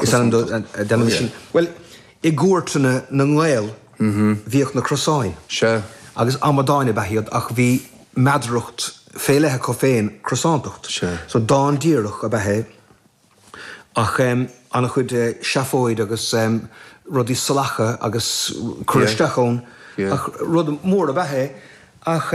Is ainm do, déanaimid sin, bhuel, i gcúirteanna na nGael bhíodh na crosáin agus amadáin ab ea iad ach bhí meadaracht fé leith acu féin, crosántacht. So dán díreach ab ea é ach an-chuid seafóid agus rudaí salacha agus cur isteach ann ach rud mór ab ea é ach.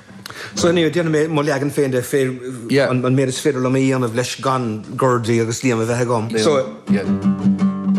So now, déanfaidh mé mo leagan féin de, féir, an méid is féidir liom é a dhéanamh leis gan Gordy agus Liam a bheith agam. So.